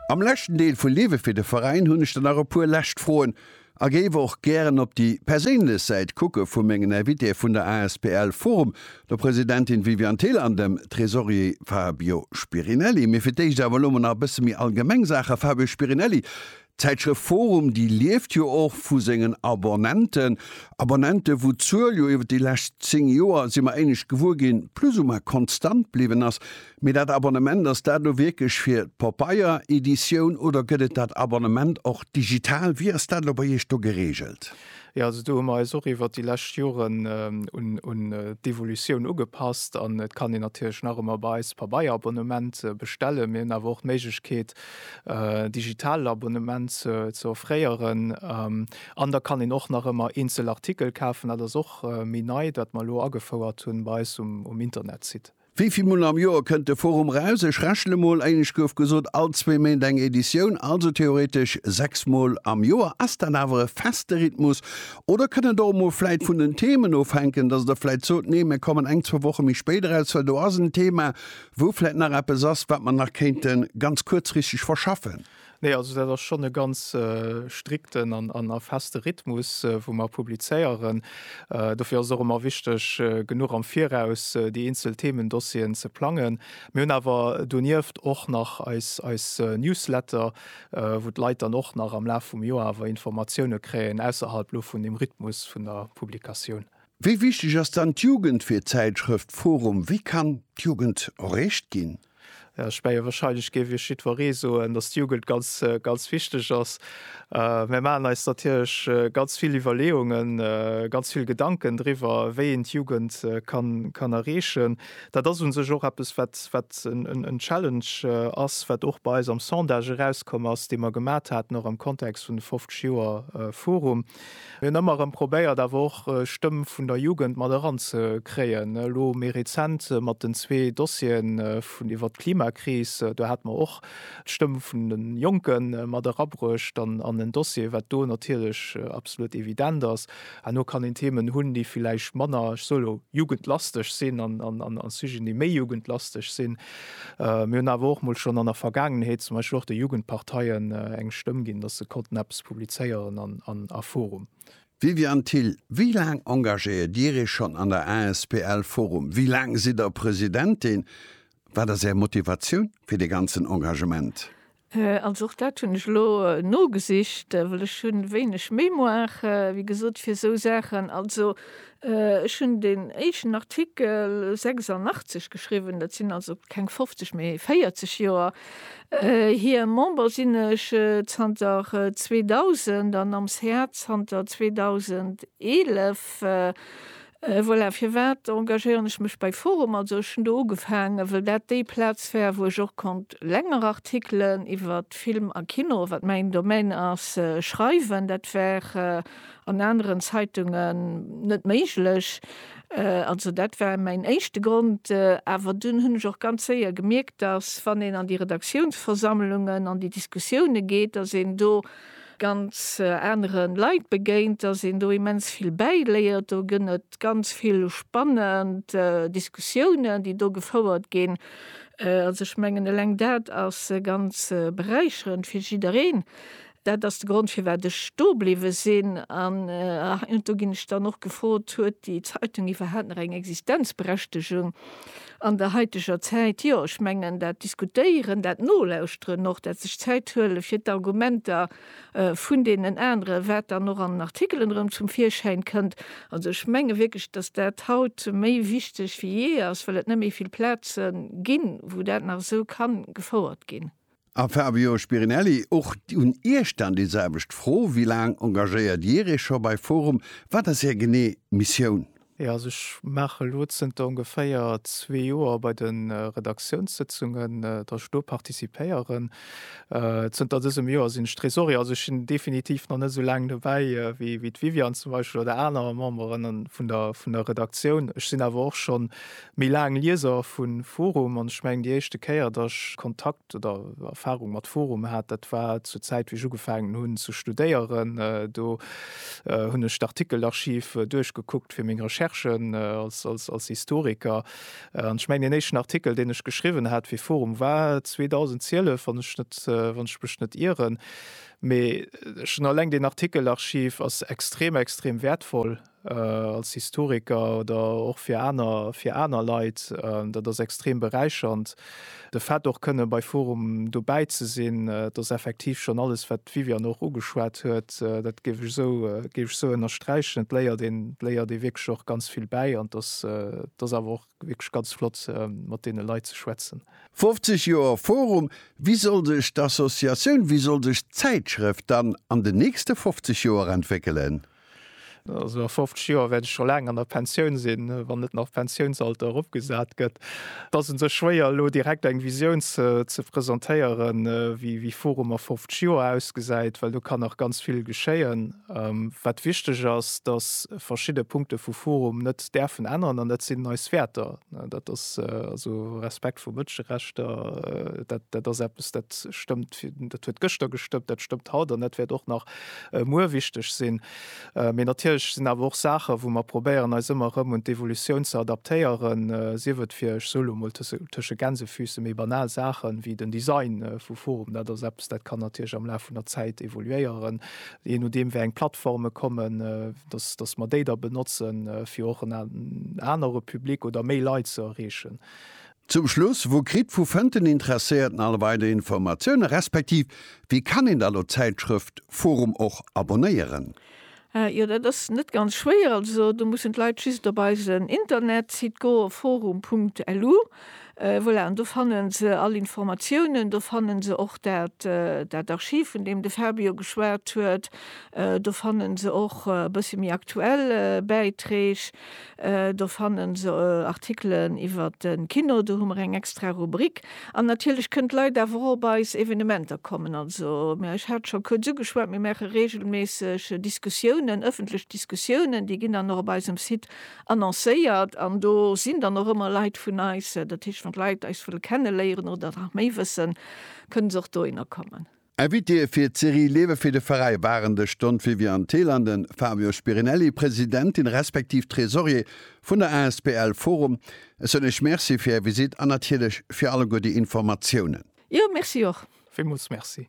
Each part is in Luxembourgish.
Am leschten Deel vu Liwwe fir de Veräin hunn ech der nach e puer lescht Froen a géif och gären op déi perséinlech Säit kucke vu mengen Invitéë vun der asbl Forum, der Presidentin Viviane Thill an dem Tresorier Fabio Spirinelli. Mee fir d'éischt awer elo mol nach e bësse méi allgemeng Saachen. Fabio Spirinelli, D'Zäitschrëft forum, déi lieft jo och vu sengen Abonnenten, Abonnenten, wou d'Zuel jo iwwer déi lescht 10 Joer, si mer éinescht gewuer ginn, plus ou moins konstant bliwwen ass. Mee dat Abonnement, ass dat elo wierklech fir d'Papeiereditioun oder gëtt et dat Abonnement och digital? Wéi ass dat elo bei Iech do geregelt? Jo, also do hu mer eis och iwwer déi lescht Joren un d'Evolutioun ugepasst an et kann een natierlech nach ëmmer bei eis d'Pabeierabonnement bestellen. Mir hunn awer och d'Méiglechkeet, digitale Abonnement ze offréieren an da kann een och nach ëmmer eenzel Artikel kafen. Dat ass och méi nei, wat mer elo agefouert hunn bei eis um Internetsite. Wéi vill mol am Joer kënnt de Forum raus? Ech rechne mol, éinescht gouf gesot, all zwee Méint eng Editioun, also theoretesch sechs mol am Joer. Ass dat awer e feste Rhythmus oder kënn et och emol vläit vun den Themen ofhänken, dass Der vläit sot, nee mir kommen eng, zwou Woche méi spéit eraus, well do ass en Thema, Wou vläit nach eppes ass, wat mer nach kéinte ganz kuerzfristeg verschaffen? Nee, also dat ass schonn e ganz strikten an a feste Rhythmus, wou mer publizéieren. Dofir ass et och ëmmer wichteg, genuch am Viraus déi eenzel Themendossieren ze plangen. Mir hunn awer donieft och nach eis Newsletter, wou d'Leit dann och nach am Laf vum Joer awer Informatioune kréien, ausserhalb lo vun dem Rhythmus vun der Publikatioun. Wéi wichteg ass dann d'Jugend fir d'Zäitschrëft forum? Wéi kann d'Jugend erreecht ginn? Ech menge wahrscheinlech géif Iech jiddweree soen, datt d'Jugend ganz ganz wichteg ass. Mär maachen eis natierlech ganz vill Iwwerleeungen, ganz vill Gedanken driwwer, wéi een d'Jugend kann kann erreechen. Dat ass u sech och eppes, wat wat en Challenge ass, wat och bei eis am Sondage erauskomm ass, dee mer gemat haten, och am Kontext vun de 50 Joer forum. Mir hunn ëmmer erëm probéiert awer och Stëmm vun der Jugend mat eran ze kréien. Elo méi rezent mat den zwee Dossieren vun iwwert d'Klimakris, do hat mer och d'Stëmm vun de Jonke mat erabruecht an en Dossier, wat do natierlech absolut evident ass. Herno kann een Themen hunn, déi villäicht manner, ech soe lo Jugendlasteg sinn an Sujeten, déi méi Jugendlasteg sinn. Mir hunn awer och mol schonn an der Vergaangenheet zum Beispill och de Jugendparteien eng Stëmm ginn, datt se konnten eppes publizéieren an a forum. Viviane Thill, Wéi laang engagéiert Dir Iech schonn an der asbl forum? Wéi laang sidd Der Presidentin? Wat ass Är Motivatioun fir dee ganzen Engagement? Also och dat hunn ech elo nogesicht, well ech hunn wéineg Mémoire, wéi gesot, fir esou Saachen. Also ech hunn deen éischten Artikel 86 geschriwwen, dat sinn also keng 50, mee 40 Joer hier. Member sinn ech zanter 2000 an am ca zanter 2011. Voilà, firwat engagéieren ech mech bei forum? Also ech hunn do ugefaangen, well dat déi Plaz war, wou ech och konnt länger Artikelen iwwer Film a Kino, wat mäin Domaine ass, schreiwen. Dat war an aneren Zeitungen net méiglech. Also dat war mäin éischte Grond. Awer dunn hunn ech och ganz séier gemierkt, datt wann een an déi Redaktiounsversammlungen, an déi Diskussioune geet, datt een do ganz aneren Leit begéint, dass een do immens vill bäiléiert. Do gënn et ganz vill spannend Diskussiounen, déi do gefouert ginn. Also ech mengen eleng dat ass ganz beräicherend fir jiddereen. Dat ass de Grond firwat ech do bliwwe sinn. An do ginn ech dann och gefrot, huet déi Zeitung iwwerhaapt nach eng Existenzberechtegung? an der haiteger Zäit, jo, ech mengen, dat Diskutéieren, dat Nolauschteren och, dat sech Zäit huele fir d'Argumenter vun deenen anere wat dann och an den Artikelen erëm zum Virschäin kënnt, also ech menge wierklech, datt dat haut méi wichteg wéi jee ass, well et net méi vill Plaze ginn, wou dat nach esou ka gefouert ginn. A Fabio Spirinelli, och un Iech dann déi selwecht Fro, wéi laang engagéiert Dir Iech scho bei forum? Wat ass Är genee Missioun? Jo, also ech maache elo zënter ongeféier zwee Joer bei de Redaktiounssëtzungen, datt ech do participéieren. Zënter dësem Joer sinn ech Tresorier, also ech sinn definitiv nach net esou laang dobäi wéi d'Viviane zum Beispill oder aner Memberen vun der Redaktioun. Ech sinn awer och schonn méi laang Lieser vu forum an ech mengen déi éischte Kéier datt ech Kontakt oder Erfahrung mat forum hat, dat war zur Zäit wéi ech ugefaangen hunn ze studéieren. Do hunn ech d'Artikelarchiv duerchgekuckt fir meng Recherchen als Historiker an ech mengen deen éischten Artikel deen ech geschriwwen hat fir forum war 2012 wann ech net wann ech mech net ieren. Mee schon alleng deen Artikelarchiv ass extrem extrem wäertvoll als Historiker oder och fir aner, fir aner Leit, dat ass extrem beräichernd. De Fait och kënne bei forum dobäi ze sinn, et ass effektiv schonn alles wat d'Viviane och ugeschwat huet, dat géif ech esou, géif ech esou ënnersträichen. Et léiert een, et léiert ee wierklech och ganz vill bäi an et ass, et ass awer och wierklech ganz flott mat deene Leit ze schwätzen. 50 Joer forum, wéi soll sech d'Associatioun, wéi soll sech d'Zäitschrëft dann an den nächste 50 Joer entwéckelen? Also a 50 Joer wäert ech scho laang an der Pensioun sinn, wann net nach d'Pensiounsalter eropgesat gëtt. Et ass un sech schwéier elo direkt eng Visioun ze presentéieren, wéi Forum a 50 Joer ausgesäit, well do kann nach ganz vill geschéien. Wat wichteg ass, datt verschidde Punkte vu Forum net däerfen änneren an dat sinn eis Wäerter. Dat ass also Respekt vu Mënscherechter, dat ass eppes dat stëmmt, dat huet gëschter gestëmmt, dat stëmmt haut an dat wäert och nach muer wichteg sinn. Mee natierlech sinn awer och Saachen, wou mer probéieren, eis ëmmer erëm un d'Evolutioun ze adaptéieren, sief et fir, ech soe lo mol tësche Gänsefüße, méi banal Saachen, wéi den Design vu Forum. Dat ass eppes, dat kann natierlech am Laf vun der Zäit evoluéieren, jee nodeem wéi eng Plattforme kommen, dass, dass mer déi da benotzen, fir och en anere Public oder méi Leit ze erreechen. Zum Schluss, Wou kritt, vu fënnt den Interesséierten all weider Informatiounen, respektiv wéi kann een da lo d'Zäitschrëft forum och abonnéieren? Jo, dat ass net ganz schwéier. Also do mussen d'Leit just op eisen Internetsite goen, forum.lu. Voilà, an do fanne se all Informatiounen. Do fanne se och dat, dat Archiv, vun deem de Fabio geschwat huet. Do fanne se och e bësse méi aktuell Bäiträg. Do fannen se Artikelen iwwer de Kino, do hu mer eng extra Rubrik. An natierlech kënnt d'Leit awer och op eis Evenementer kommen. Also mä ech hat scho kuerz ugeschwat, mir maache reegelméisseg Diskussiounen, ëffentlech Diskussiounen, déi ginn dann och op eisem Site annoncéiert. An do sinn dann och ëmmer Leit vun eis. Dat heescht, wann d'Leit eis wëlle kenne léieren oder nach méi wëssen, kënne se och dohinner kommen. Invitéë fir d'Serie Lewe fir de Veräi waren de Stond Viviane Thill an de Fabio Spirinelli, Presidentin respektiv Tresorier vun der asbl Forum. Ech soen Iech Merci fir Är Visite an natierlech fir alleguer déi Informatiounen. Jo, Merci och. Villmools Merci.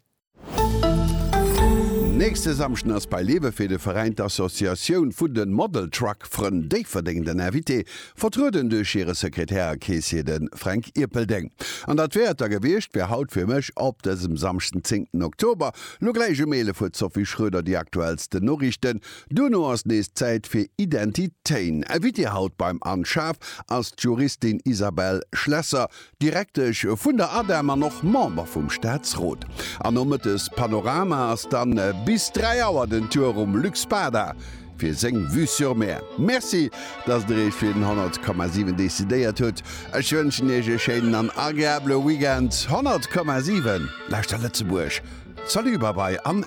Nächste Samschden ass bei Lewe fir de Veräin d'Associatioun vun de Model Truck Frënn Déifferdeng den Invité. Vertrueden duerch hire Sekretär a Keessier, de Fränk Ierpeldeng. An dat wär et da gewiescht, wär haut fir mech, op dësem Samschd den 10 ten Oktober, lo gläich um 11 Uer d'Sophie Schroeder, déi aktuellsten Noriichten. Duerno ass nees Zäit fir Identitéin. Invitée haut beim An Schaf ass d'Juristin Isabelle Schlesser, Direktesch vun der ADEM an och Member vum Staatsrot. An nomëttes Panorama ass dann bis 3 Auer den Tour um Luc Spada fir seng Vue sur Mer. Merci, dass der Iech fir den 100,7 decidéiert hutt. Ech wënschen Iech e schéinen an agreabele Weekend. 100,7 lauschtert Lëtzebuerg. Salut, Babai an.